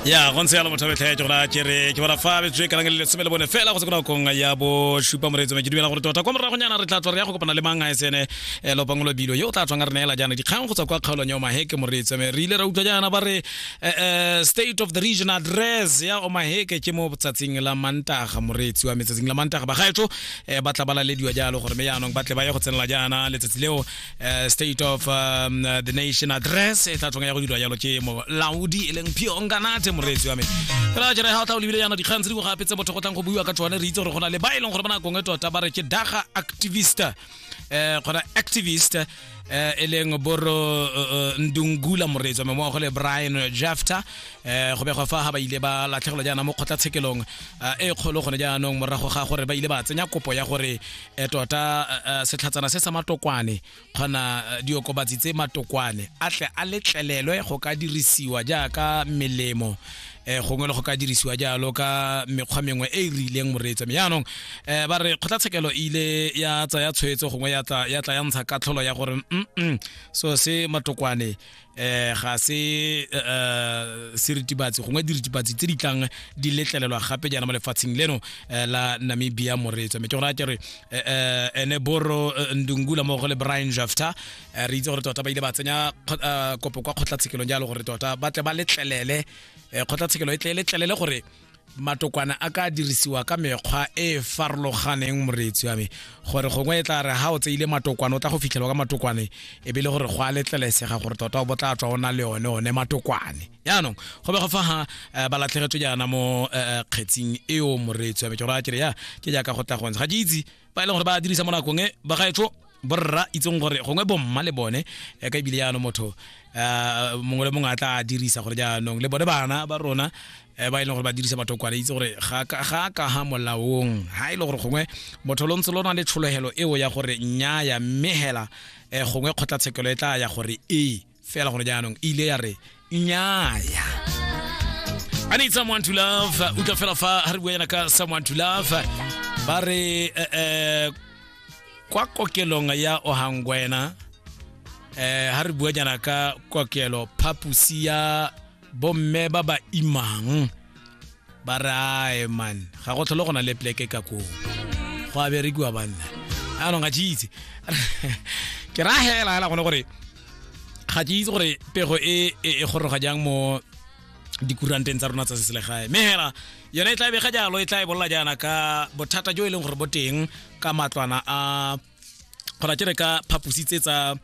ya go ntse yalo motho betlha ya ke gona ke re ke bona fa betswe ka lang le lesome le bone fela go se kona kong ya bo shupa moreetso me ke dumela gore tota kwa morago nyana re tla tswa re ya go kopana le mang a sene eh, lopangolo bilo yo o tla tswang re neela jaana dikgang go tswa kwa kgaolong ya omaheke moreetso me re ile ra utlwa jaana ba re eh, eh, state of the region address ya omaheke ke mo tsatsing la mantaga moreetsi wa metsatsing la mantaga bagaetso eh, ba tla ba lalediwa jalo gore me jaanong ba tle ba ye go tsenela jaana letsatsi leo uh, state of um, uh, the nation address e tla tlong ya go dirwa jalo ke molaodi e leng phionganate moreetsi wa me fela jere ga o tla o lebile yana dikgang tse dingwe gape tse botho go tlang go buiwa ka tsone re itse gore go na le ba e leng gore ba nakong e tota ba re ke daga activist eh gona activist eh e leng boro eh, ndungula moreetsi wa me mmogo le brian jafta eh go begwa fa ga ba ile ba latlhegelwa jaana mo kgotlatshekelong eh, e kgolo gone jaanong morago ga gore ba ile ba tsenya kopo ya gore e tota uh, setlhatsana se sa matokwane kgona uh, diokobatsi tse matokwane a tle a letlelelwe go ka dirisiwa jaaka melemo eh gongwe le go ka dirisiwa jalo ka mekgwa mengwe e e rileng moreetsa me jaanong eh ba re kgotlatshekelo e ile ya tsaya tshwetso gongwe ya tla ya ntsha katlholo ya gore mm so se matokwane eh ga se eh, seritibatsi gongwe diritibatsi tse di tlang di letlelelwa gape jaana mo lefatsheng leno eh, la namibia moreetswa mme ke gore a kere eh, ene boro ndungula mo go le brian jafta re itse gore tota ba ile ba tsenya kopo kwa kgotlatshekelong jalo gore tota ba tle ba letlelele kgotlatshekelo e tle e letlelele gore matokwana a ka dirisiwa ka mekgwa e e farologaneng moreetsi wa me gore gongwe e tla re ga o tseile matokwane o tla go fitlhelwa ka matokwane e be le gore go a letlelesega gore tota o botla tswa o na le one one matokwane jaanong go be go fa ga eh, ba latlhegetswe jaana mo eh, eh, kgetsing eo moreetsi wa me ke gore a kere ya ke jaaka go tla go ntsha ga ke itse ba e leng gore ba dirisa mo nakong e ba gaetsho borra itseng gore gongwe bomma le bone eh, ka ebile jaanong motho eh, mongwe le mongwe a tla dirisa gore jaanong le bone bana ba rona eh, ba e leng gore ba dirisa batho kwana itse gore ga a ka ga molaong ga e le gore gongwe motho lo ntse lo na le tshologelo eo ya gore nnyaya mme hela um gongwe kgotlatshekelo e tla ya gore ee fela gone jaanong e ile ya re nyaya I need someone to love utlwa fela fa ha re bua yana ka someone to love ba re eh, eh, kwa kokelong ya ohangwena eh ha re bua jana ka kokelo phapusi ya bomme ba ba imang ba re ae man ga go tlhole go na le pleke ka koo go a berekiwa banna anong ga jeitse ke ra hela hela gone gore ga ke itse gore pego e e e goroga jang mo dikuranteng tsa rona tsa seselegae mme hela yone e tla bega jalo e tla e bolola jaana ka bothata jo e leng gore bo teng ka matlwana a gona ke re ka phapositse tsa